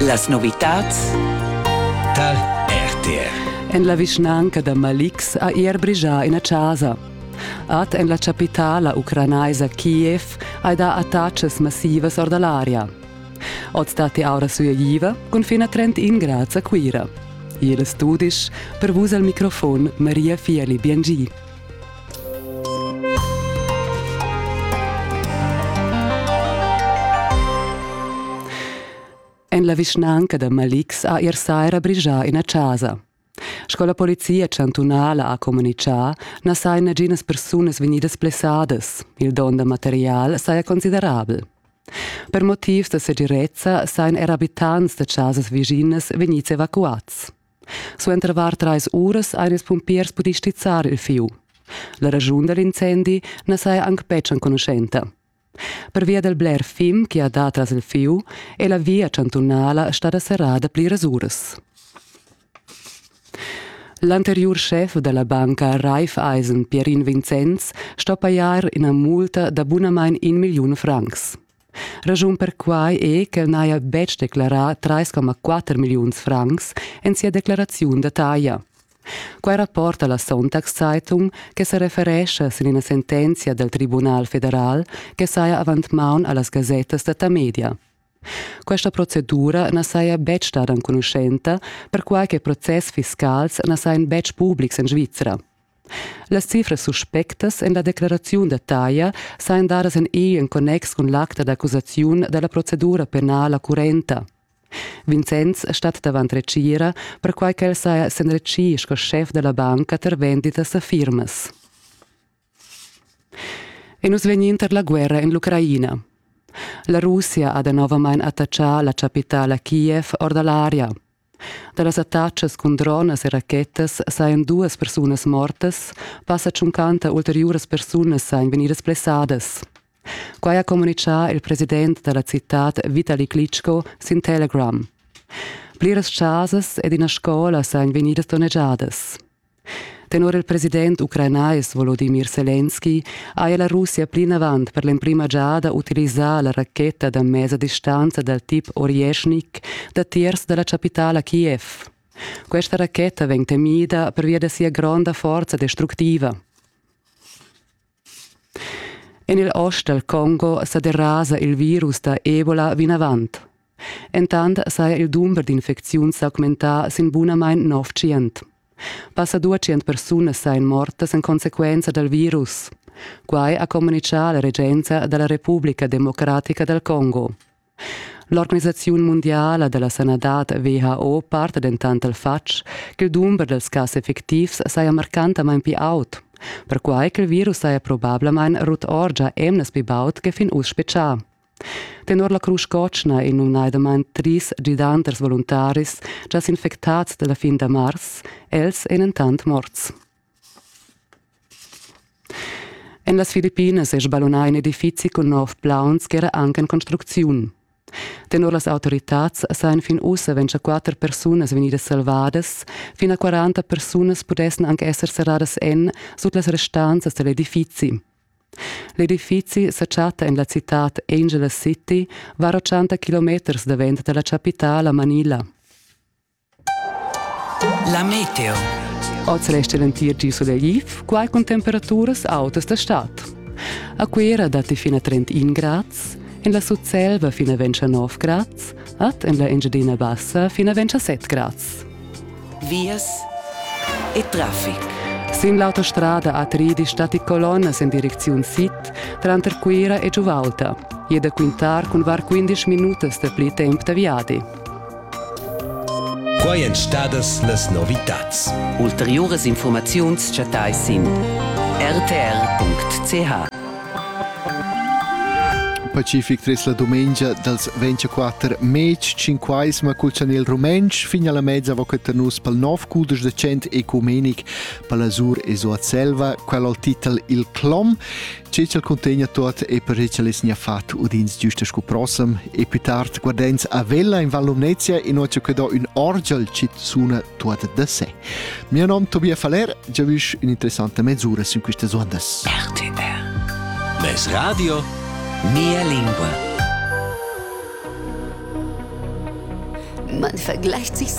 Las novitads tar RTR. En la vischnanca da Malix ha er brigià ina chasa. Ad en la chapitala ucranaisa Kiev hai dà attacas massivas or da l'aria. Oz datti aura sueiva cun fin a 31 grads a Cuira. Igl studi per vus al microfon Maria Fieli Biengi. En la vischnanca da Malix ha ier saira brigià ina chasa. Sco la polizia chantunala ha communitgà, na sajan naginas persunas vegnidas blessadas. Il don da material saja considerabel. Per motivs da segirezza sajan er abitants da chasas viginas vegnids evacuads. Suenter var trais uras han ils pumpiers pudì stizzar il fieu. La raschun da l'incendi na saja anc betg enconuschenta. Pervia dal bler fim che ha dà tras il fieu è la via chantunala stada serrada pliras uras. L'anteriur schef della banca Raiffeisen, Pierin Vincenz, sto pajar ina multa da bunamain in milliun francs. Raschun per quai è ch'el n'haja betg declarà 3,4 milliuns francs en sia declaraziun da taglia. Quai rapporta la Sonntagszeitung che sa referescha sin ina sentenzia dal Tribunal federal che saja avant maun a las gasettas da Tamedia. Questa procedura na saja betg stada enconuschenta, perquai che process fiscals na sajan betg publics en Svizra. Las cifras suspectas en la decleraziun da taglia sajan dadas en egl en connex cun l'acta d'accusaziun da la procedura penala currenta. Vincenz stat davant retgira, perquai ch'el saja s'enretschì sco schef da la banca tar venditas da firmas. E nus vegnin tar la guerra en l'Ucraina. La Russia ha danovamain attachà la chapitala Kiev or da l'aria. Da las attachas cun dronas e rachetas sajan duas persunas mortas, passa tschuncanta ulteriuras persunas sajan vegnidas blessadas. Quai ha communitgà il president da la citad Vitali Klitschko sin Telegram. Pliras chasas ed ina scola sajan vegnidas donnegiadas. Tenor il president ucranais Volodimir Selenski haja la Russia plinavant per l'emprima giada utilisà la racheta da mesa distanza dal tip Orješnik datiers da la chapitala Kiev. Questa racheta vegn temida pervia da sia gronda forza destructiva. En il ost dal Congo sa derasa il virus da Ebola vinavant. Entant saja il dumber d'infecziuns s'augmentà sin bunamain nov tschient. Passa duecent persunas sajan mortas en consequenza dal virus. Quai ha communitgà la regenza da la Republica democratica dal Congo. L'organisaziun mundiala da la sanadad WHO parta dentant dal fatg ch'il dumber dals cas effectivs saja marcantamain pli aut, perquai ch'il virus saja probablamain rut orgia emnas pli baud che fin uss spetgà. Tenor la Crusch Cotschna è numnadamain tris gidanters voluntaris gia s'infectads da la fin da mars, els èn entant morts. En las Filippinas è sballunà in edifizi cun nov plauns ch'era anc en construcziun. Tenor las autoritads sajan fin ussa ventiquatter persunas vegnidas salvadas, fin a quaranta persunas pudessan anc esser serradas en sut las restanzas da l'edifizi. L'edifizi sa chatta en la citad Angela City, var 80 kilometers davent da la chapitala Manila. La meteo. Oz resta l'entir di sulegliv, quai cun temperaturas autas da stad. A Cuira datti fina 31 grads, en la Sutselva fina 29 grads, ad en la Engiadina Bassa fina 27 grads. Vias e traffic. Sin l'autostrada A3 stati colonnas en direcziun sid, tranter Cuira e Giuvalta. E da quintar cun var 15 minutas da pli temp da viadi. Quai èn stadas las novitads. Ulteriuras infurmaziuns chattai sin rtr.ch. Pacific tres la dumengia dals 24 mez cinquais ma culchan il rumentsch fin alla mezza voqueta nus pal nov cudesch de cent ecumenic pala Sur e Soat Selva, qual al titel il Clom Che ch'el cuntegna tuot e per che ch'el es nia fat udins giusta scu prossem e più tard guardens a Vella in Val Lumnezia in ho que do ün orgel chi suna tuot da sé. Mio nom Tobias Faller, giavüsch ün'interessanta mesura sün quistas ondas. RTR Les Radio Mia lingua Man vergleicht sich so